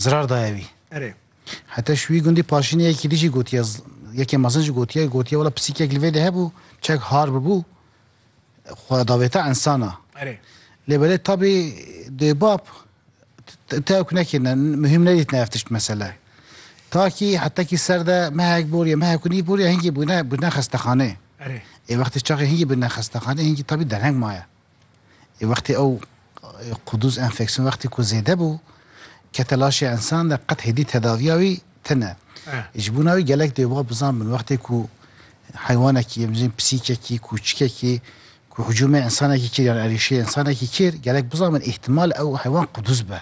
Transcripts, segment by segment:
zirar daye wî. Erê. Heta şûyî gundî paşînê yekî dijî gotiye yekê mezin jî gotiye gotiye wela pisîkek li vê de hebû çek har bibû xwe davêta insana. Erê. Lê belê tabî dêbab tewk nekirine muhîm nedîtine ev tişt mesele. Takî heta kî ser de mehek boriye mehek û nî boriye hingî bûne bûne xestexanê. Erê. Ê wextê çaxê hingî bûne xestexanê hingî tabî derheng maye. Ê wextê ew quduz enfeksiyon wextê ku zêde bû kete laşê ensan de qet hêdî tedaviya wî tine. Ji bona wî gelek dê va bizan bin wextê ku heywanekî em jin pisîkekî, kûçikekî ku hicûmê ensanekî kir yan erîşê ensanekî kir gelek bizan bin îhtimal ew heywan quduz be.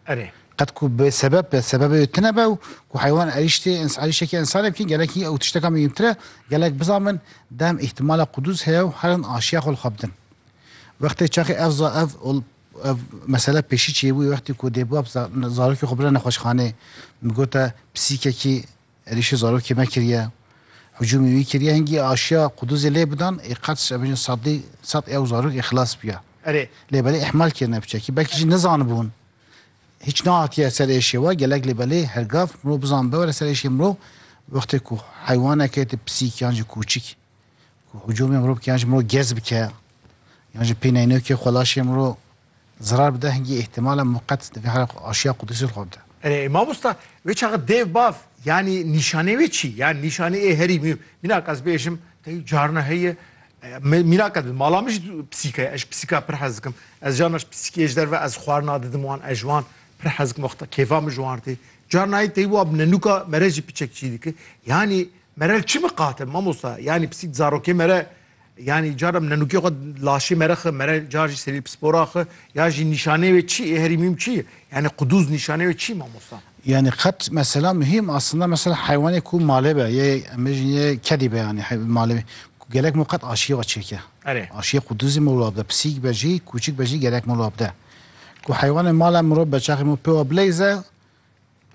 Erê. Qet ku bi sebeb be, sebebê wê tune be û ku heywan erîştê ins- erîştekî ensanê bikî gelek î ew tişteka mihîmtir e. Gelek bizamin dem îhtîmala qudûz heye û herin aşiya xwe li xwe bidin. Wextê çaxê ev za ev ol ev mesele pêşî çêbûye wextê ku dêbab za zarokê xwe bira nexweşxanê, min gote pisîkekî, Êrîşê zarokê me kiriye, hicûmê wî kiriye, hingî aşiya Quduzê lê bidan, ê qet ji evin sadî sad ew zarok ê xilas biya. Erê, lê belê îhmal kirine bi çekî, belkî jî nizanibûn. Hîç nehatiye ser êşê we, gelek lê belê her gav mirov bizan biwere ser êşê mirov, wextê ku heywaneke ti pisîk yan jî kûçik ku hicûmê mirov bike yan jî mirov gez bike yan jî pêneynoke xwe laşê mirov Zirar bide hingî îhtimala muqet di vê halê xwe aşiya Qudusî li xwe bide. Erê ey mamosta, wê çaxa dev bav yanî nîşanê wê çi? Yanî nîşanê ê herî mî mînak ez bêjim tey carna heye me mînak ez bi mala min jî pisîka ez ji pisîka pir hez dikim. Ez carna ji pisîkê ji derve ez xwarina didim wan ez ji wan pir hez dikim wexta kêfa min ji wan tê. Carna heye tey wa bi nenûka mere jî piçek çî dike. Yanî mere li çi miqate mamosta? Yanî pisîk di zarokê mere Yanî cara nenûkê xwe laşê mere xwe mere car jî serî pispora xwe ya jî nîşanê wê çi yê herî mîm çi yê? Yanî qudûz nîşanê wê çi mamosta? Yanî qet mesela muhîm aslında mesela heywanê ku malê be yê em bêjin yê kedî be yanî malê gelek mo qet aşiyê xwe çêke. Erê. Aşiyê qudûzî mo wila bide pisîk be jî kûçik be jî gelek mo wila bide. Ku heywanê mala mirov be çaxê mo pê wa bileyze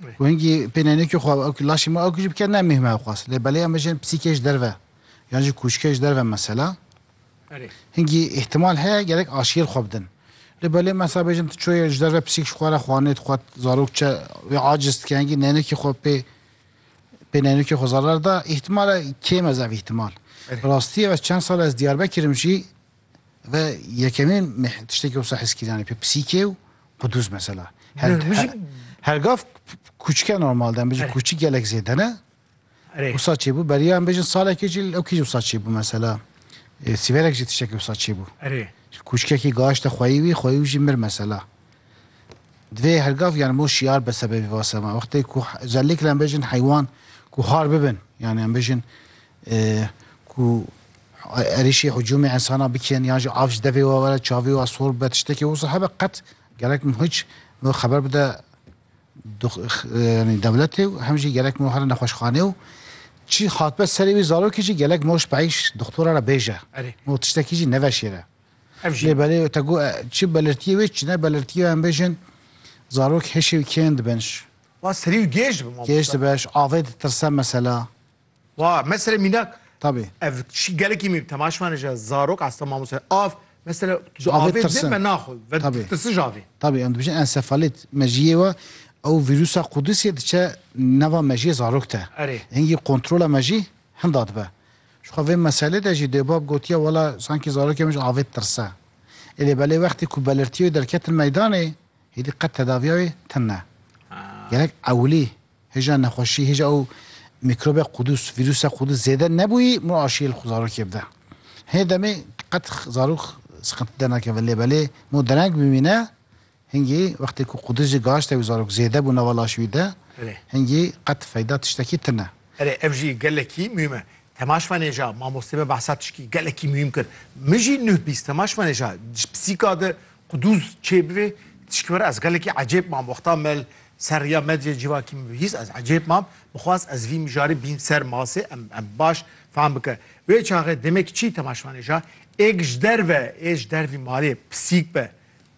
Wengî pênenêkê xwe ew ki laşê me ew ki jî bike ne mêhme xwest. Lê belê em bejin psîkê ji derve yan jî kûçikê ji derve mesela. Erê. Hingî îhtimal heye gerek aşiyêr xwe bidin. Lê belê mesela bejin tu çoyê ji derve psîk ji xwe re xwanê dixwet zarok çe wê aciz dike hingî nenekê xwe pê pênenêkê xwe zarar da îhtimal e kêm ez ev îhtimal. Rastî ev ez çend sal ez Diyarbekir'im jî Ve yekemîn tiştekî wisa heskîranê pê pisîkê û qudûz mesela. Her gav kûçike normal de em bêjin kûçik gelek zêde ne. Wisa çêbû beriya em bêjin salekê jî ew kî jî wisa çêbû mesela. Sîverek jî tiştekî wisa çêbû. Kûçikekî gaşte xweyî wî xweyî wî jî mir mesela. Divê her gav yani mo şiyar be sebebî vase me. Wextê ku zellikle em bêjin heywan ku har bibin yani em bêjin ku êrîşî hicûmê insana bikin yan jî av ji devê we were çavê we sor bibe tiştekî wisa hebe qet gerek min hiç min xeber bide yani dewletê û hem jî gerek min here nexweşxanê û çî hatbe serê wî zarokê jî gelek moş peyş doktora re bêje min tiştekî jî neveşêre ev jî belê te got çi belirtiyê wê çi ne belirtiyê em bêjin zarok hêşê wî kêm dibin Wa serî û gêj dibe gêj dibe avê ditirse mesela Wa mesela mînak Tabii. ev şi gelekî mî temaşmane ji zarok asta mamoste av mesela ji Avê avê tirsin. din me naxwe ve Tabii. tirsin ji avê. Tabii em dibêjin ensefalit mejiyê we ew vîrûsa Qudisê diçe nava mejiyê zarok de. Erê. Hingî kontrola mejî hinda dibe. Ji xwe vê meselê de jî dêbab gotiye wela sankî zarokê min ji avê ditirse. Ê lê belê wextê ku belirtiya wê derketin meydanê hêdî qet tedaviya wê tune. Gelek ewilî Hêja nexweşî, hêja û mîkrobê qûdûs, vîrûsa qûdûs zêde nebûyî mû aşiyê li xwe zarokê bide. Hinê demê qet zarok siqintî dernakeve lê belê mû dereng bimîne, hingî wextê ku qûdûs jî gihişte wî zarok zêde bû nava laşê wî de, hingî qet feyda tiştekî tune. Erê ev jî gelekî muhîm e. Temaş Manêja, mamostê me behsa tişkî gelekî muhîm kir. Min jî nuh bîst Temaş Manêja ji pisîka di Quduz çê bivê tişkî were ez gelekî ecêb mam wexta me li ser rêya medyayê civakî min bihîst ez ecêb mam bixwast ez vî mijarê bîn ser masê em em baş fam bike wê çaxê demê kiçî temaşvanê ja êk ji derve ê ji dervî malê pisîk be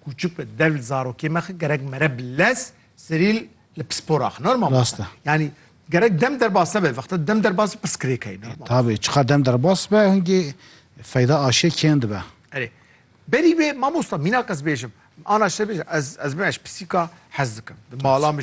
kûçik be derv li zarokê me xi gerek mere bi lez serî li pispor axin normal Rast e. yanî gerek dem derbas nebe vexta dem derbas bi piskirêk heye normal Tabii çiqa dem derbas be hingî feyda aşê kêm dibe. Erê Berî wê mamosta mînak ez bêjim ana şte bêjim ez ez me ez pisîka hez dikim di mala min jî.